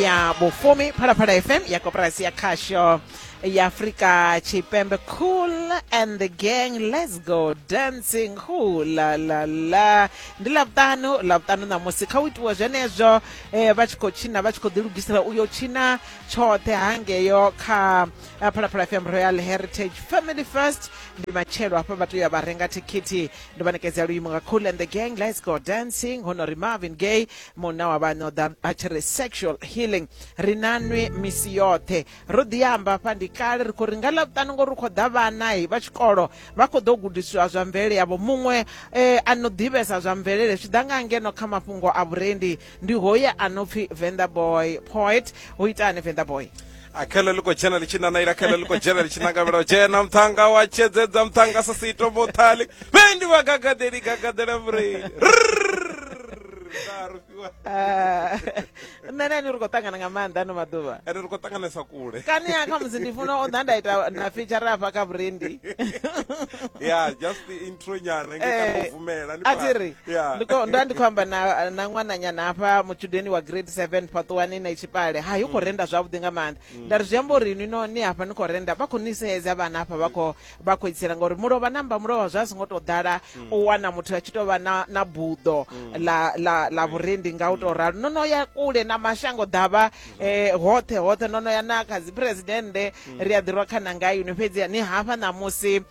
ya vhufumi phalaphala fm ya koporasi ya khasho ya afrika tshipembe cool and the gang let's go dancing hu la la la ndi lavhuṱanu lavhuṱanu ṋamusi kha u itiwa zwenezwo eh, vha tshi khou tshina vha tshi khou ḓilugisela uyo tshina tshoṱhe hangeyo kha eh, phalaphala fm royal heritage family first ndi matshelo hafha vha tea vha renga thikhithi ndi vha ṋekedza luimo nga cool and the gang let's go dancing honori marvin gay munna wa vhane o ḓa a tshi ri sexual healing ri na nwi misi yoṱhe ro ḓi amba hafha ndi kale ri khou ri nga ḽavhuṱanu ngori ri khou ḓa vhanahi vha tshikolo vha khou ḓo gudisiwa zwa mvelele yavho muṅwe um a no ḓivhesa zwa mvelele zwi ḓa nga ngeno kha mafhungo a vhurendi ndi hoye a no pfhi vendaboy poet u itani vendaboy akhele liko dzhena litshi nana ila khele liko dzhena litshi nangavhela dzhena muthanga wa tshedzedza muthanga sa sito mothali vhe ndi vha gagadeli gagadela murei ah, nṋe na ni ri khou ṱangana nga maanḓa ano maḓuvha ene ri khou ṱanganesa kule kani ya khamusi ndi funa u ḓa nda ita na feature afha kha vhurendi ya just Sonyana nge ka Eh, muvumela ni a ti ri Yeah. ndi khou- nda ndi khou amba na na ṅwananyana hafha mutshudeni wa grade 7 phaṱuwani na tshipale hayi u khou renda zwavhuḓi nga maanḓa nda ri zwi amba uri ni no ni hafha ni khou renda vha khou ni sedza vhana hafha vha khou vha khou itsela ngauri mulovha namba mulovha zwa songo tou ḓala u wana muthu a tshi tou vha na na buḓo la la la vhurendi nga u tou ralo no no ya kule na mashango ḓavha eh, hoṱhe hoṱhe no no ya na kha dzi presidennde ri a ḓirwa khananga yuni fhedzi ni hafha ṋamusi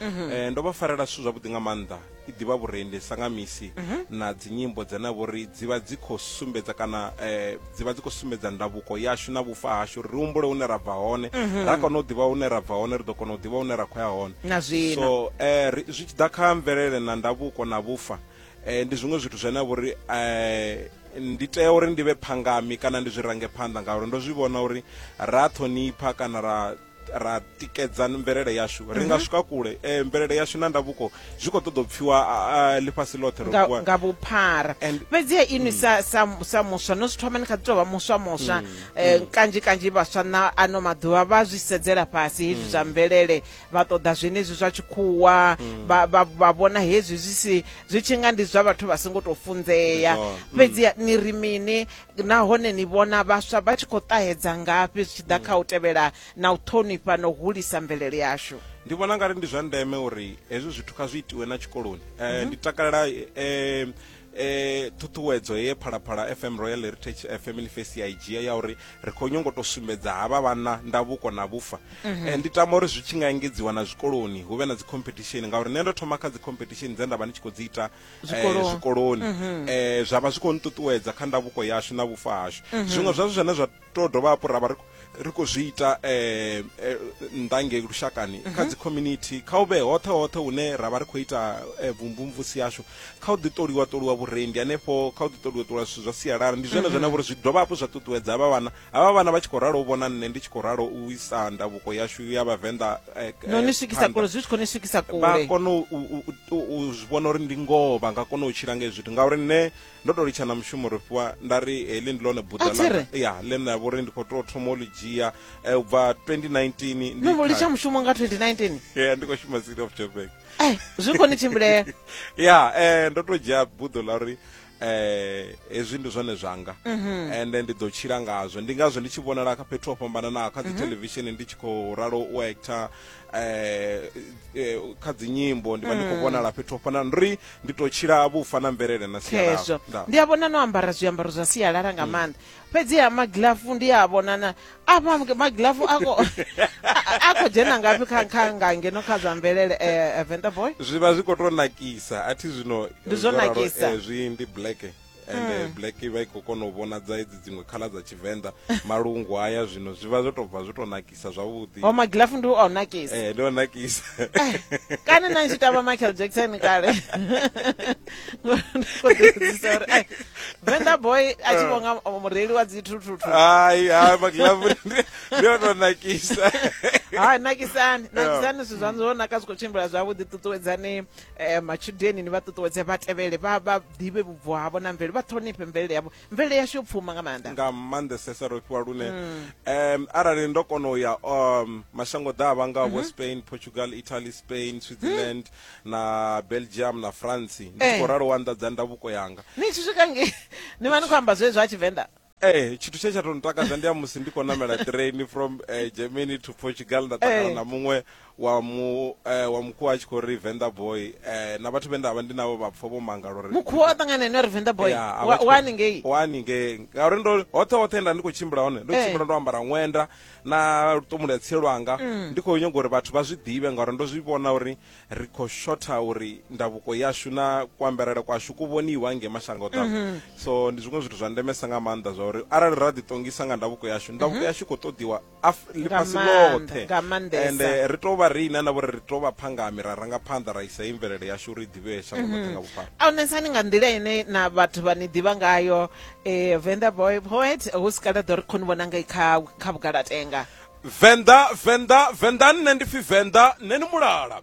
Mhm. Eh, ndo vha farela zwithu zwavhuḓi nga maanḓa i ḓivha vhurendi sa nga misi mhm. na dzinyimbo dzane vho ri dzi vha dzi khou sumbedza kana um dzi vha dzi khou sumbedza ndavuko yashu na vhufa hashu ri humbule hune ra bva hone mhm. ra kona u ḓivha hune ra bva hone ri ḓo kona u ḓivha hune ra khou ya hone so um zwi tshi ḓa kha mvelele na ndavuko na vhufa um ndi zwiṅwe zwithu zwine vho ri um ndi tea uri ndi vhe phangami kana ndi zwi range phanḓa ngauri ndo zwi vhona uri ra ṱhonipha kana ra ra tikedza mvelele yashu ri nga mhm. swika kule eh, mvelele yashu na ndavhuko zwi khou ṱoḓa u pfiwa ḽifhasi ḽoṱhe nga vhuphara fhedziha inwi mm. sa muswa no zwi thoma ni kha ḓi tou vha muswa muswa mm, eh, mm. kanzhi kanzhi vhaswa na ano maḓuvha vha zwi sedzela fhasi hezwi zwa mvelele vha ṱoḓa zwenezwi zwa tshikhuwa vha vhona hezwi zwi si zwi tshi nga ndi zwa vhathu vha songo tou funzea fhedziha ni ri mini nahone ni vhona vhaswa vha tshi khou ṱahedza ngafhi zwi tshi ḓa kha u tevhela na u ṱhonifha na u hulisa mvelele yashu ndi vhona ngari ndi zwa ndeme uri hezwi zwithu kha zwi itiwe na tshikoloni um ndi takalela um eh ṱhuṱhuwedzo ye phalaphala fm royal heritage eh, family face ya i dzhia ya uri ri khou nyongo to sumbedza havha vhanna ndavhuko na vhufa mhm. eh, ndi tama uri zwi tshi nga engedziwa na zwikoloni hu vhe na dzi competition ngauri nṋe ndo thoma kha dzi competition dze nda vha ndi tshi khou dzi ita zwikoloni, eh, zwikoloni. Mm -hmm. eh, zwa vha zwi khou nṱuṱuwedza kha ndavhuko yashu na vhufa hashu mm -hmm. zwiṅwe zwazwo zwine zwa to dovha hafhu ra vha ri khou zwi ita eh, eh, ndange lushakani mm -hmm. kha mhm. dzi community kha u vhe hoṱhe hoṱhe hune ra vha ri khou ita eh, vumvumvusi yashu kha u ḓiṱoliwa ṱoliwa vhurendi hanefho kha u ḓiṱoliwa ṱoliwa zwithu zwa sialala ndi zwone mm -hmm. zwine vhori zwi dovha hafhu zwa ṱuṱuwedza vha vhana havha vhana vha tshi khou ralo u vhona nṋe ndi tshi khou ralo u isa ndavhuko yashu ya vhavenḓa eh, no ni eh, swikisa kule zwi tshi khou ni swikisa kule vha kone u zwi vhona uri ndi ngoho vha nga kona u tshila nga zwithu ngauri nṋe ndo to litsha na mushumo ri fhiwa nda ri heḽi ndi ḽone buḓa ya ḽe nda vhori ndi khou to thoma u ḽi dzhia eh, u bva 2019 no vho litsha mushumo nga 2019 ya ndi khou shuma city of joburg zwi khou ni tshimbilea ya ndo to dzhia buḓo ḽa uri eh hezwi ndi zwone zwanga mhm. ende ndi ḓo tshila ngazwo ndi ngazwo ndi tshi vhonala kha fhethu ho fhambananaho kha dzi mhm. television ndi tshi khou ralo u actor eh, eh kha dzi nyimbo ndi vha ndi khou mhm. vhonala fhethu ho fana ri ndi to tshila vhufa na mvelele na sialala ndi a vhona no ambara zwiambaro zwa sialala nga maanḓa fhedziha magilafu ndi a vhonana apa magilafu a khou dzhena ngafhi kha kha nga ngeno kha zwa mvelele eh, eh, venda boy zwi vha zwi khou tou nakisa a thi zwino ndi zwo nakisa eh, zwi ndi black ende mm. black vha i khou kona u vhonadza edzi dziṅwe khala dza tshivenḓa malungu haya zwino zwi vha zwo tou bva zwo tou nakisa sa zwavhuḓi o magilafu ndi o nakisa eh ndo nakisa eh, kana na tshi tamba Michael Jackson kale ko ḓisisa uri ai Venda boy a tshi vhonga eh. mureili wa dzi thuthutu ai ha magilafu ndi o nakisa ha nakisani nakisani zwithu zwaṋu zwo naka zwi khou tshimbila zwavhuḓi ṱuṱuwedzani um eh, matshudeni ni vha ṱuṱuwedze vha tevhele vha vha ḓivhe vhubvo havho na mvelele vha ṱhonifhe mvelele yavho mvelele yashu yo pfuma nga maanḓa nga maanḓesesa ro fhiwa lune mm. um arali ndo kona u ya um mashango ḓavha nga mm -hmm. spain portugal italy spain switzerland mm. na belgium na france ndi eh. khou ralo wa anḓadza ndavuko yanga ni tshi swika nge ni vha ni khou amba zwezwo a tshivenḓa Eh, tshithu tshe tsha to ntakadza ndi ya musi ndi khou namela train from uh, germany to portugal nda takala eh. na muṅwe wa mu eh, wa mukhuwa a tshi khou ri venḓa boy eh, na vhathu vhe nda vha ndi navho vha pfha vho mangala uri mukhuwa o ṱangana ene ri venḓa boy Ya, a vha tshi khou- wani ngei wani ngei ngauri ndo hoṱhe hoṱhe nda ndi khou tshimbila hone ndo Eh. tshimbila ndo ambara ṅwenda na luṱomulo ya tsie lwanga Mm. ndi khou nyanga uri vhathu vha zwi ḓivhe ngauri ndo zwi vhona uri ri khou shotha uri ndavuko yashu na kuambarele kwashu ku vhoniwa nge mashango ḓavha Mhm. so ndi zwiṅwe zwithu zwa ndemesa nga maanḓa zwa uri arali ra ḓiṱongisa nga ndavuko yashu ndavuko Mhm. yashu i khou ṱoḓiwa ḽifhasi ḽoṱhe ende eh, ri tou vha riṋe na vhori ri tou vha phangami ra ranga phanḓa ra isa i mvelele yashu uri i ḓivhee shango ḽoṱhe mhm. nga vhuphara aunesani nga nḓila ine na vhathu vha ni ḓivha ngayo um venda boy poet hu si kale ḓo ri khoni vhona ngai kha kha vhugalatenga venḓa venḓa venḓa nṋe ndi pfi venḓa nṋe ni mulala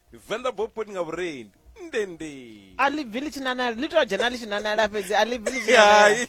Venḓa bopot nga vhurendi ndende a ḽi bvi ḽi tshi nanala ḽi tou dzhena ḽi tshi nanala fhedzi a ḽi bvi ḽi tshi nanala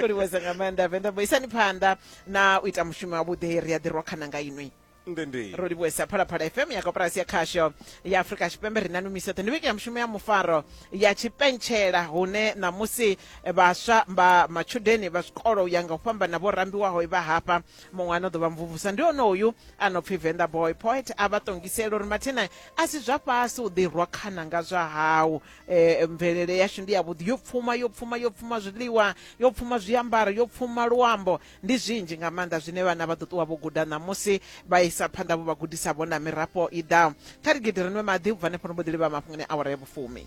livhuwesa nga maanḓa venḓa bo isani phanḓa na u ita mushumo wavhuḓi ri a ḓirwa khana nga inwi ndende ro livhuwesa phalaphala fm ya koporasi ya khasho ya afurika tshipembe ri nanu miso ṱhe ndi vhege ya mushumo ya mufaro ya tshipentshela hune ṋamusi vhaswa vha matshudeni vha zwikolo u ya nga u fhambana vho rambiwaho vha hafha muṅwe ano ḓovha mvumvusa ndi one uyu a no pfhi venda boy poet a vha ṱongisela uri mathina a si zwa fhasi u ḓirwa khana nga zwa hau um mvelele yashu ndi yavhuḓi yo pfuma yo pfuma yo pfuma zwiḽiwa yo pfuma zwiambaro yo pfuma luambo ndi zwinzhi nga maanḓa zwine vhana vha ḓo ṱuwa vho guda ṋamusi vha isa phanḓa vho vha gudisa vho na mirafho i ḓaho kha rigidi rinwe maḓi u bva nefho ri mbo ḓi livha mafhungoni awara ya vhufumi